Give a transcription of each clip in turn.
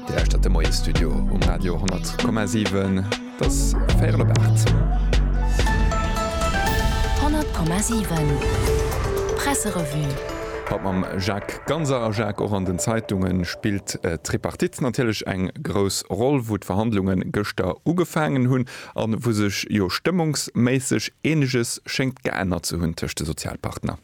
Dir lauschtert de Moiesstudio um Radio 10,7. Et ass véierel op aacht. 100,7 Presserevue. Haut mam Jacques Ganser a Jacques, och an den Zeitunge spillt d'Tripartite natierlech eng grouss Roll, wou d'Verhandlunge gëschter ugefaangen hunn a wou sech jo stëmmungsméisseg eeneges schéngt geännert ze hunn tëscht de Sozialpartner.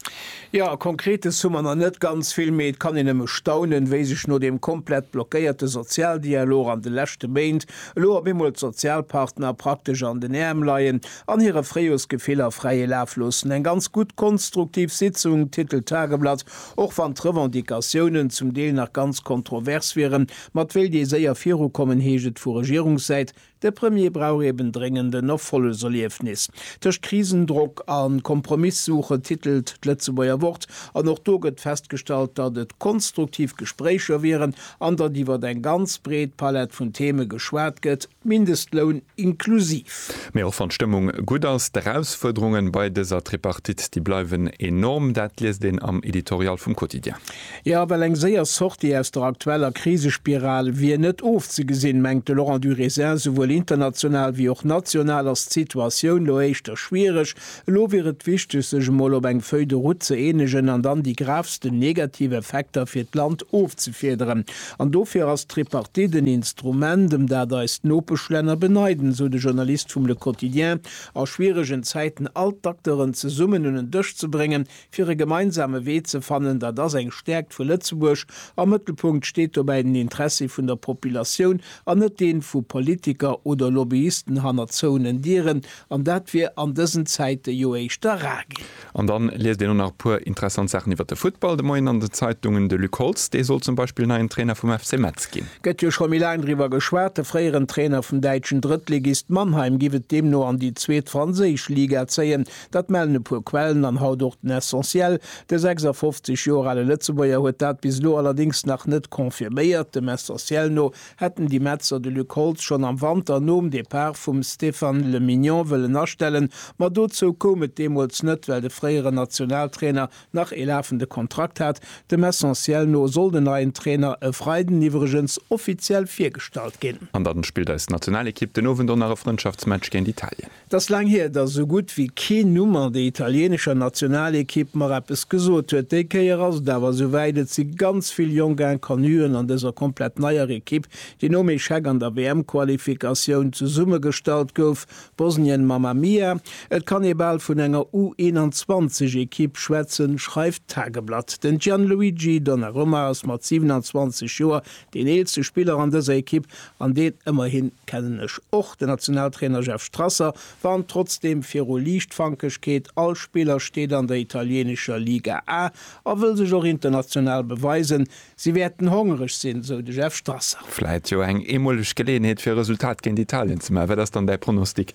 Jo, Konkretes hu mer nach net ganz vill, mee et kann een nëmme staunen, wéi sech no deem komplett blockéierte Sozialdialog an de leschte Méint elo op eemol d'Sozialpartner praktesch an den Äerm leien an hire Fréijoersgefiller fräie Laf loossen. Eng ganz gutt konstruktiv Sitzung, titelt d'Tageblatt, och wann d'Revendicatiounen zum Deel nach ganz kontrovers wieren. Mat wéilt ee séier virukommen? heescht et vu Regierungssäit. De Premier brauch eben dréngend en Erfolleserliefnis. Tëscht Krisendrock a Kompromisssuche titelt d'Lëtzebuerger Wort an och do gëtt festgestallt, datt et konstruktiv Gespréicher wieren an datt iwwer eng ganz breet Palett vun Theme geschwat gëtt, Mindestloun inklusiv. Mee och wann d'Stëmmung gutt ass, d'Erausfuerderunge bei dëser Tripartite, déi bleiwen enorm. Dat liest een am Editorial vum Quotidien. Jo, well eng séier Sortie aus der aktueller Krisespiral wier net ofzegesinn, mengt de Laurent Durisin. Souwuel international wéi och national ass d'Situatioun lo éischter schwiereg. Elo wier et wichteg, sech emol op eng Feuille de route ze eenegen an dann déi gravsten negativ Effekter fir d'Land ofzefiederen. An dofir ass d'Tripartite en Instrument, ëm dat eis Nopeschlänner beneiden, esou de Journalist vum Le Quotidien. A schwieregen Zäiten all d'Acteuren zesummen un en Dësch ze bréngen, fir e gemeinsame Wee ze fannen, dat ass eng Stäerkt vu Lëtzebuerg. Am Mëttelpunkt steet dobäi den Interessi vun der Populatioun an net deen vu Politiker oder Lobbyisten hannert zouenen Dieren, an dat wier an dësen Zäiten jo éischter rar ginn. An dann liest een och nach e puer interessant Saachen iwwert de Futtball de Moien an den Zeitungen. De Luc Holtz, dee soll zum Beispill neien Trainer vum FC Metz ginn. Gëtt jo scho méi laang driwwer geschwat. De fréieren Trainer vum däitschen Drëttligist Mannheim giff et deemno an déi zweet franséisch Liga zéien. Dat mellen e puer Quellen an haut och den Essentiel. De 56 Joer ale Lëtzebuerger huet dat bis elo allerdéngs nach net confirméiert. Dem Essentiel no hätten déi Metzer de Luc Holtz schonn am Wanter nom Depart vum Stéphane Le Mignon wëllen astellen, ma dozou koum et deemools net, well de fréieren Nationaltrainer nach ee lafende Kontrakt hat. Dem Essentiel no soll den neien Trainer e Freiden iwwregens offiziell virgestallt ginn. An dann spillt eis Nationalekipp den Owend och nach e Frëndschaftsmatch géint Italien. 't ass laang hier, datt esou gutt wéi keen Numm an der italieenescher Nationalequipe mer eppes gesot huet. Déi Kéier ass et awer esou wäit, et si ganz vill jonk Inconnuen an dëser komplett neier Equipe, déi nom Echec an der WM-Qualifikatioun zesummegestallt gouf. Bosnien, Mamma Mia, et kann ee bal vun enger U21-Equipe schwätzen, schreift d'Tageblatt. Den Gianluigi Donnarumma ass mat 27 Joer Deen eelste Spiller an dëser Ekipp, an deen ëmmerhin kennen ech och, den Nationaltrainer Jeff Strasser, warnt trotzdeem viru Liichtfankegkeet, All Spiller steet an der italieenescher Liga A a wëll sech och international beweisen. Si wäerten hongereg sinn, esou de Jeff Strasser. Vläit jo eng eemoleg Geleeënheet fir e Resultat géint Italien ze maachen. Wat ass dann däi Pronostic?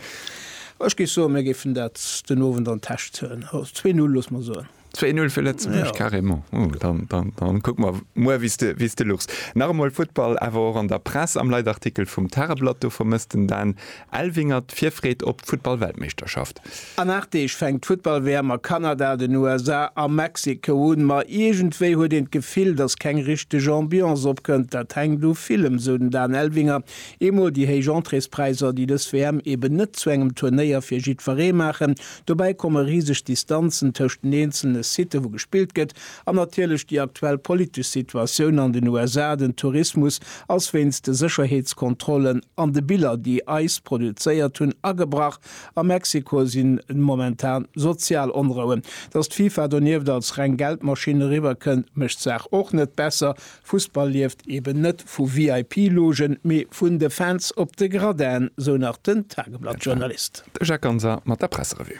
Ech géif soen, mir géifen dat den Owend an d'Täsch zéien. Zwee Null, loosse mer soen. 2-0 fir Lëtzebuerg, ja. carrément. Oh, dann, dann, dann kuck mer muer, wéi de, wéi de luchs. Nach emol Futtball, awer och an der Press, am Leitartikel vum Tageblatt, do vermësst den Dan Elvinger d'Virfreed op d'Futtball-Weltmeeschterschaft. An 8 Deeg fänkt d'Futtball-WM a Kanada, den USA a Mexiko un. Ma iergendwéi huet een d'Gefill, datt keng richteg Ambiance opkënnt. Dat hänkt u villem, esou den Dan Elvinger. Eemol déi héich Entréespräisser, déi dës WM eben net zu engem Turnéier fir jiddweree maachen, Dobäi komme riseg Distanzen tëscht den eenzele Site wou gespillt gëtt an natierlech déi aktuell politesch Situatioun an den USA. Den Tourismus ass wéinst de Sécherheetskontrollen an de Biller déi ice produzéiert hunn agebrach. A Mexiko sinn momentan sozial Onrouen. Datt d'FIFA donieft als reng Geldmaschinn eriwwer kënnt mécht d'Saach och net besser. Fussball lieft eben net vu VIP-Logen, mee vun de Fans op de Gradinen, sou nach den Tageblatt-Journalist. De Jacques Ganser mat der Presserevue.